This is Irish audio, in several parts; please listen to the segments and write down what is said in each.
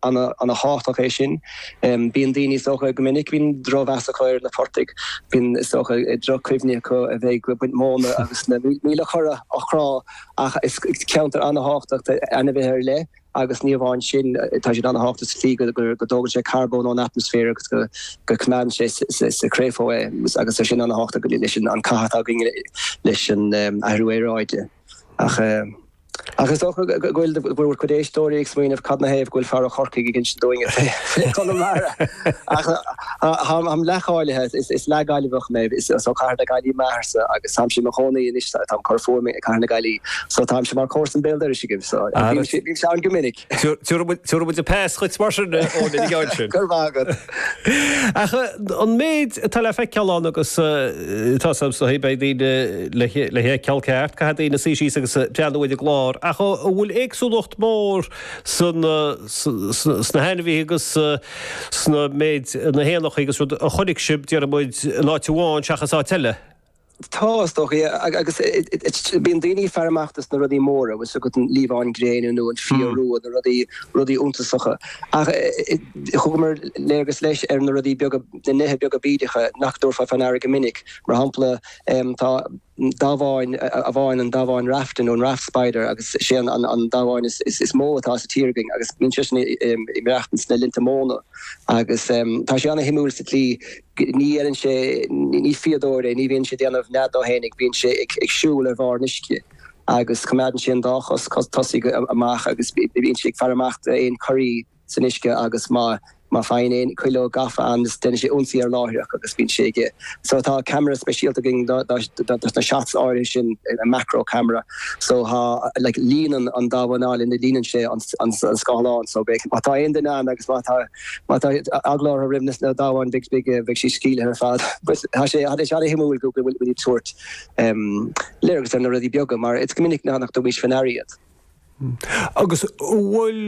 Ana thábhachtach é sin. Bíonn daoine, is dócha, go minic, bíonn drochmheas acu ar na portaigh. Bíonn, is dócha, droch-chuimhní acu a bheith ag baint móna agus na míoltóga á gcrá. Ach is ceantar ana thábhachtach d'ainmhithe ar leith agus ní amháin sin, tá siad ana thábhachtach sa tslí go dtógann sé carbón ón atmaisféar agus go coimeádann sé sa chréafóg é agus tá sin ana thábhachtach leis an cath atá againn leis an athrú aeráide. Ach is dócha go bhfuil bhur gcuid éisteoirí ag smaoineamh cad 'na thaobh go bhfuil fear ó Chorcaigh ag insint dúinn fé Chonamara. Ach táim leath-cháilithe, is leath-Gaillimheach mé, is ó Cathair na Gaillí m'athair-sa agus táimse i mo chónaí anois, táim ag cur fúm i gCathair na Gaillí, so táimse mar comharsa béal dorais agaibh, so bímse ann go minic. Tiúrfaidh muid an pass dhuit mar sin, Eoin, an gceann sin. Go raibh maith agat. Ach an méid atá le feiceáil ann agus tá's agam sna háiteanna beidh daoine le feiceáil, ceart, caithfidh daoine suí síos agus breathnú ar an gclár. Ach an bhfuil éagsúlacht mór sna hainmhithe agus sna méid, na héanacha agus rud, a chonaic sibh, déarfaidh muid, in áit amháin seachas áit eile? Tá, is dócha. Agus bíonn daoine ag faire amach dos na rudaí móra, bhfuil 's agat, an liamhán gréine nó an fia rua, na rudaí, rudaí iontasacha. Ach thugamar léargas leis ar na rudaí beaga, na nithe beaga bídeacha nach dtabharfá fé ndeara go minic. Mar shampla, tá damhán amháin, an damhán rafta nó an raft spider agus 'sé an an damhán is is mó atá sa tír againn agus bíonn seisean ag maireachtaint ins na linnte móna agus tá sé ana shuimiúil sa tslí Ní dhéanann sé, ní fíodóir é, ní bhíonn sé ag déanamh nead dó fhéinig, bíonn sé ag siúl ar bharr an uisce agus coimeádann sé an dá chos tosaigh amach agus bíonn sé ag faire amach d'aon chorraí san uisce agus má fhaigheann aon chuileog gafa ann déanann sé ionsaí air láithreach agus bíonn sé ag so tá camera speisialta againn do na shots áirithe sin, macro camera, so tá like líonann an damhán alla, líonann sé an scáileán so má tá aon duine ann agus má tá. Má tá eagla orthu roimh na damháin, beidh, beidh siad sceimhlithe ar fad. Tá sé an-shuimiúil go bhfuil tú ag tabhairt léargas ar na rudaí beaga mar is go minic nach dtugann muid faoi ndeara iad. Agus an bhfuil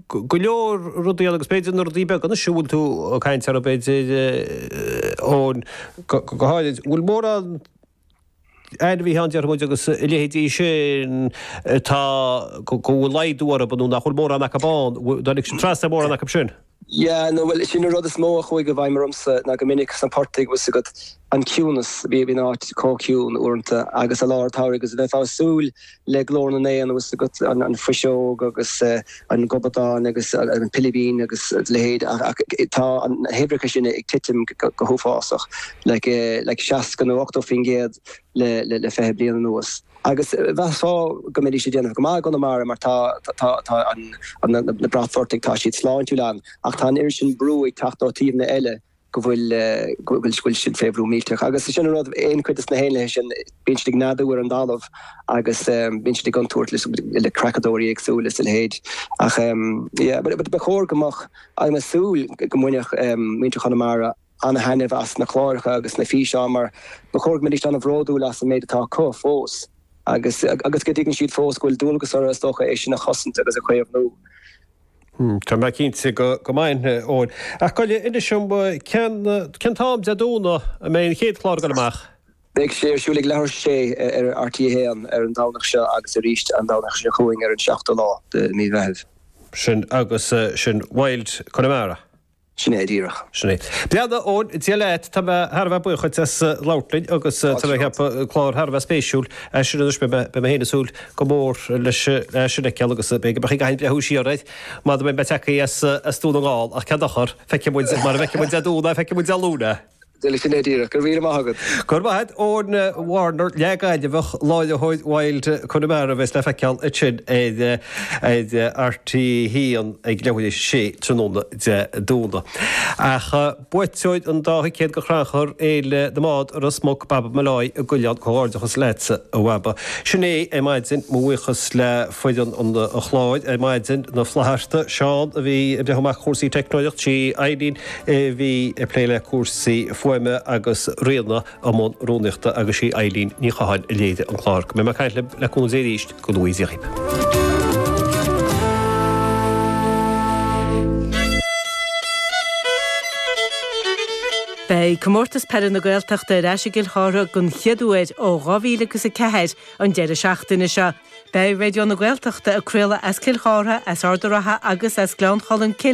go leor rudaí ann, agus b'fhéidir na rudaí beaga, anois a bhfuil tú ag caint orthu, b'fhéidir, Eoin, go háirid, an bhfuil mórán ainmhithe ann, déarfaidh muid, agus a leithéidí sin, atá, go bhfuil laghdú orthu, nó nach bhfuil mórán acu ann, nár tháinig sibh trasna ar mórán acu sin. Yeah, nó, bhuel, sin an rud is mó a chuaigh i bhfeidhm ormsa, ná go minic sna portaigh, bhfuil 's agat, an ciúnas, bhí an áit chomh ciúin uaireanta, agus i lár an tsamhraidh, agus bheifeá ag súil le glór na n-éan anuas agat, an fuiseog agus an gobadán agus an pilibín agus a leithéid, ach tá na huimhreacha sin ag titim go huafásach, like, 60 nó 80 faoin gcéad le fiche bliain anuas. Agus mheasfá go mbeidís ag déanamh go maith i gConamara mar tá na bratphortaigh, tá siad sláintiúil ann, ach tá an oiread sin brú ag teacht ó thaobhanna eile go bhfuil siad fé bhrú millteach. Agus sin an rud, aon chuid de na héanlaithe sin, bíonn siad ag neadú ar an dtalamh agus bíonn siad i gcontúirt le creachadóirí éagsúla is a leithéid. Ach ba chóir go mbeadh, ach tá súil go mbainfeadh muintir Chonamara ana-thaitneamh as na cláracha agus na físeáin mar ba chóir go mbeidís ana-bhródúil as an méid atá acu fós agus go dtuigfidh siad fós go bhfuil dualgas orthu, is dócha, é sin a chosaint agus a chaomhnú. Tá mé cinnte go mbainfidh, Eoin. Ach gabh i leith, inis dom, cén, cén t-am Dé Domhnaigh a mbeidh an chéad chlár ag dul amach? Beidh sé ar siúl ag leathuair tar éis a sé ar RTÉ a hAon ar an Domhnach seo agus arís an Domhnach seo chugainn ar an seachtú lá de mhí Mheithimh. Sin agus sin Wild Connemara. Sin é díreach. Sin é. Bhuel a Eoin, Dia leat. Tá mé thar a bheith buíoch duit as labhairt linn agus tá mé ag ceapadh go bhfuil clár thar a bheith spéisiúil as sin anois. Beidh mé féin ag súil go mór leis é sin a fheiceáil agus b'fhéidir go mbeadh ag aithint le húis siar air mura mbeidh mé tagtha as Dún na nGall ach cén dochar, feicfidh muid, mara bhfeicfidh muid é Dé Domhnaigh, feicfidh muid é Dé Luain. Sin é díreach. Go raibh míle maith agat. Go raibh maith agat, Eoin Warner, leathGhaillimheach, láithreoir Wild Connemara a bheas le feiceáil ansin ar RTÉ 1 ag leathuair tar éis a sé tráthnóna Dé Domhnaigh. Ach buaiteoir an dá thicéad do Chrannchur Fhéile na mBád i Ros Muc, Baba Molloy i gCuilleán, comhghairdeachas leatsa a Bhaba. Sin é ar maidin, mo bhuíochas le foireann an chláir ar maidin, na Flathartaigh, Seán a bhí ag breathnú amach cúrsaí teicneolaíochta, Eileen, í a bhí ag plé le cúrsaí fuaime agus Ríona i mbun rúnaíochta agus sí Eilín Ní Chatháin a léirigh an clár. Go mbeidh mé ag caint libh le cúnamh Dé arís go luath déarfainn. Beidh Comórtas Peile na Gaeltachta ar ais i gCill Chártha den chéad uair ó 2004 an deireadh seachtaine seo. Beidh Raidió na Gaeltachta ag craoladh as Cill Chártha, as Ard a' Ratha agus as Gleann Cholm Cille